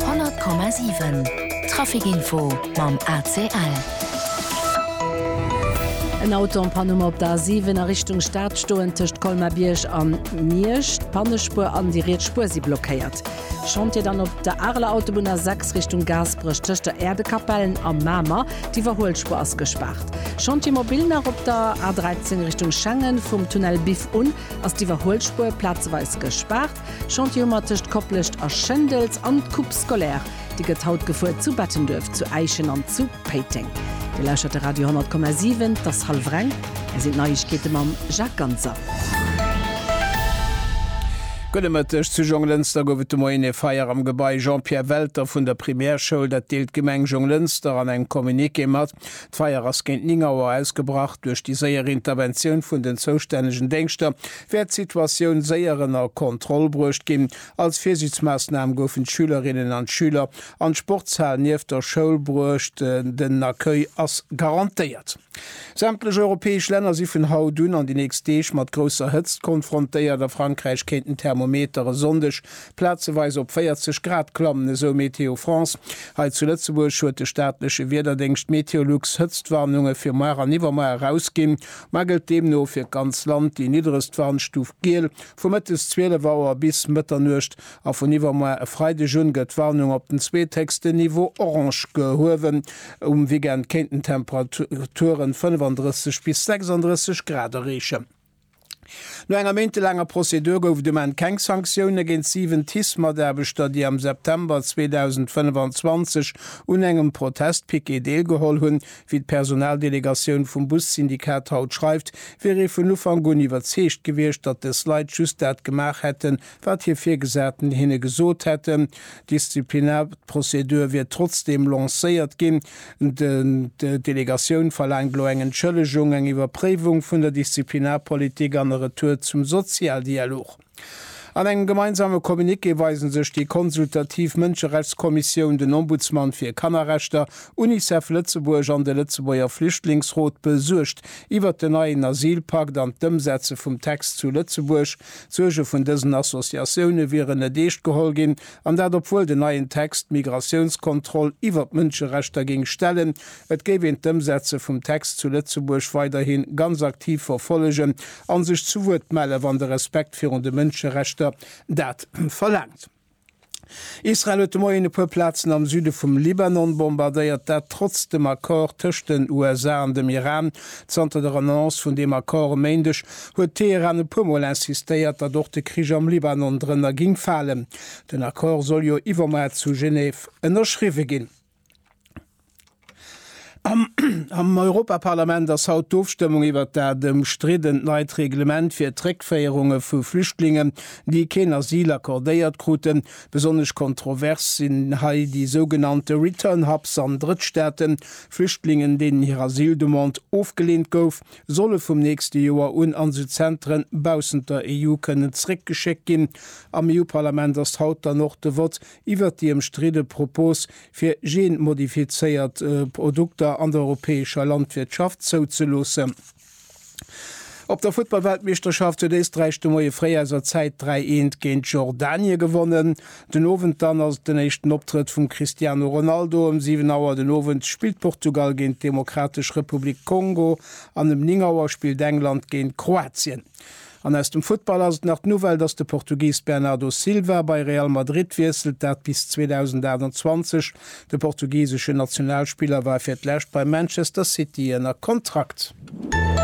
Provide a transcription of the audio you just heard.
100,7 Trafic Info mam ACL. En Auto an Panne op der A7 a Richtung Stad stoen tëscht Colmar-Bierg a Miersch d'Pannespuer an déi riets Spuer si blockéiert. Chantier dann op der Areler Autobunn A6 Richtung Gaasperech tëscht der Äerdekapell a Mamer, d'Iwwerhuelspuer ass gespaart. Chantier mobil nach op der A13 Richtung Schengen, vum Tunnel Biff un ass d'Iwwerhuelspuer plazeweis gespaart. Chantioumer tëscht Koplescht a Schendels an d'Coupe scolaire, déi gëtt haut gefuer zu Bettenduerf, zu Äischen an zu Péiteng. Dir lauschtert de Radio 10,7. T'ass hallef reng. Hei sinn d'Neiegkeete mam Jacques Ganser. Gudde Mëtteg. Zu Jonglënster gouf et de Moien ee Feier am Gebai Jean-Pierre Welter vun der Primärschoul. Dat deelt d'Gemeng Jonglënster an engem Communiqué mat. D'Feier ass géint 9 Auer ausgebrach. Duerch déi séier Interventioun vun den zoustännegen Déngschter wäert d'Situatioun séier ënner Kontroll bruecht ginn. Als Virsiichtsmaassnam goufen d'Schülerinnen an d'Schüler an d'Sportshal nieft der Schoul bruecht. Den Accueil ass garantéiert. Sämtlech europäesch Länner si vun haut un an déi nächst Deeg mat grousser Hëtzt konfrontéiert. A Frankräich kéinten d'Thermometer e Sonndeg plazeweis op 40 Grad klammen, esou Météo France. Hei zu Lëtzebuerg huet de staatleche Wiederdéngscht Meteolux Hëtztwarnunge fir muer an iwwermuer erausginn. Mar gëllt deemno fir d'ganz Land déi nidderegst Warnstuf Giel. Vu mëttes 12 Auer bis Mëtternuecht a vun iwwermoar e Freideg un gëtt d'Warnung op den zweethéchsten Niveau Orange gehuewen. Um Weekend kéinten d'Temperaturen 35 bis 36 Grad erreechen. No enger méintelaanger Prozedur gouf et um Enn keng Sanktioune géint 7 TICE-Mataarbechter, déi am September 2025 un engem Protestpiquet deelgeholl hunn, Wéi d'Personaldelegatioun vum Bussyndikat haut schreift, wier ee vun Ufank un iwwerzeegt gewiescht, datt des Leit just dat gemaach hätten, wat hir Virgesaten hinne gesot hätten. D'Disziplinarprozedur wier trotzdeem lancéiert ginn. D'Delegatioun verlaangt elo eng Entschëllegung, eng Iwwerpréiwung vun der Disziplinarpolitik an e Retour zum Sozialdialog. An engem gemeinsame Communiqué weisen sech déi consultativ Mënscherechtskommissioun, den Ombudsman fir Kannerrechter, Unicef Lëtzebuerg an de Lëtzebuerger Flüchtlingsrot besuergt iwwert den neien Asylpakt an d'Ëmsetze vum Text zu Lëtzebuerg. D'Suerge vun dësen Associatioune wieren net eescht geholl ginn, an dat obwuel den neien Text d'Migratiounskontroll iwwer d'Mënscherechter géing stellen, Et géif een d'Ëmsetze vum Text zu Lëtzebuerg weiderhi ganz aktiv verfollegen a sech zu Wuert mellen, wann de Respekt virun de Mënscherechter dat verlaangt. Israel huet de Moien e puer Plazen am Süde vum Libanon bombardéiert, dat trotz dem Accord tëscht den USA an dem Iran. Zanter der Annonce vun deem Accord e Méindeg huet Teheran e puer Mol insistéiert, datt och de Krich am Libanon drënner géing falen. Den Accord soll jo iwwermoar zu Genève ënnerschriwwe ginn. Am Europaparlament ass haut d'Ofstëmmung iwwert dat ëmstriddent neit Reglement fir d'Réckféierunge vu Flüchtlingen, déi keen Asyl accordéiert kruten. Besonnesch kontrovers sinn hei déi sougenannte Return Hubs an Drëttstaaten. Flüchtlingen, deenen hir Asyldemande ofgeleent gouf, solle vum nächste Joer un an esou Zentren baussent der EU kënnen zeréckgeschéckt ginn. Am EU-Parlament ass haut dann och de Vott iwwert déi ëmstridde Propos fir geenmodifizéiert Produkter an der europäescher Landwirtschaft zouzeloossen. Op der Futtballweltmeeschterschaft huet Éisträich de Moie fréi aus a Zäit 3 eent géint Jordanie gewonnen. Den Owend dann ass et den éischten Optrëtt vum Cristiano Ronaldo. Ëm 7 Auer den Owend spillt Portugal géint d'Demokratesch Republik Kongo an ëm 9 Auer spillt England géint Kroatien. An aus dem Futtball ass et nach d'Nouvelle, datt de Portugis Bernardo Silva bei Real Madrid wiesselt, dat bis 2028. De portugiseschen Nationalspiller war fir d'lescht bei Manchester City ënner Kontrakt.